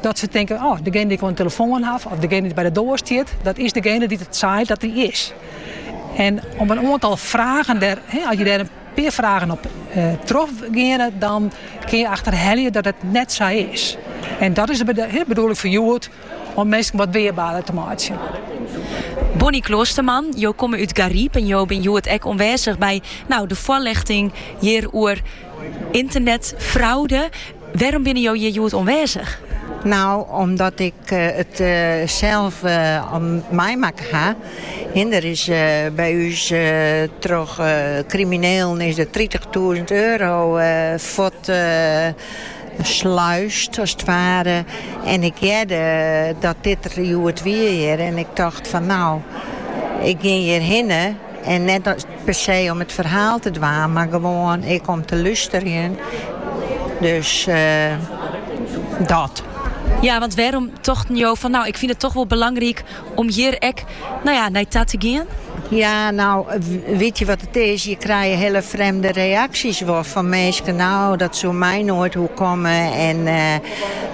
Dat se tinke, oh, degene dy't ik oan de telefoan haw of degene dy't by de doar stiet, dat is degene dy't it seit dat hy is. En op in oantal fragen der, as je der in pear fragen op eh, trochgeane, dan kin je achterhelje dat it net sa is. En dat is de bedoeling fan hjoed, om minsken wat weerbaarder te meitsjen. Bonnie Kloosterman, jo komme út Garyp en jo binne hjoed ek oanwêzich by no, de foarljochting hjir oer ynternetfraude. Wêrom binne jo hjir hjoed oanwêzich? No, omdat ik it sels meimakke ha. Der is by ús troch kriminelen is der tritichtûzen euro fuortsluisd as it ware. En ik hearde dat dit der hjoed wie hjir en ik tocht fan no, ik gean hjirhinne en net as. Per se om it ferhaal te dwaan, mar gewoan ek om te lusterjen. Dus dat. Ja, want wêrom tochten jo fan nou, ik fyn it toch wol belangryk om hjir ek nou ja, nei ta te gean? Ja, nou, witje wat it is, je krije hiele frjemde reaksjes wol fan minsken, nou, dat soe my noait oerkomme en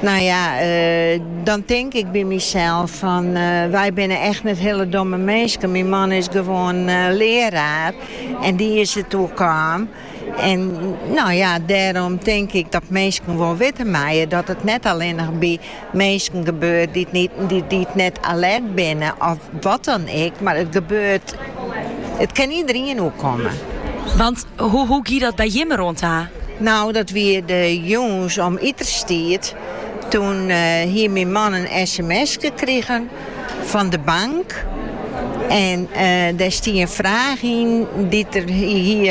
Nou ja, eh, dan tink ik by mysels fan eh, wy binne echt net hiele domme minsken. Myn man is gewoan eh, learaar en dy is it oerkaam. En nou ja, dêrom tink ik dat minsken wol witte meie dat it net allinnich by minsken gebeurt dy't net alert binne of Wat dan ek, mar it gebeurt. It kin iederien oerkomme. Want hoe, hoe gie dat by jimme om en ta? Nou, dat wie de jûns om iterstiid. Toen eh, hie myn man in sms'ke krigen fan de bank. En eh, dêr stie in fraach yn dy't er hie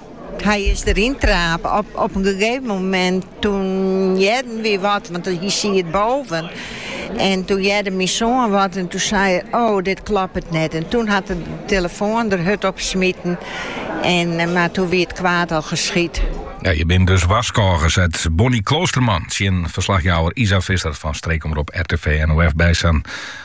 Hy is deryn trape. Op in gegeven moment toen hearden we wat, want hy siet boven. En toen hearde myn soan wat en toen sei er, oh, dit kloppet net. En toen hat er de telefoan der hurd op smiten. En, eh, mar toen wie it kwaad al geschied. Ja, je binne dus warskôge, seit Bonnie Kloosterman tsjin verslachjouwer Isa Visser fan streekomrop RTV NOF Bijsan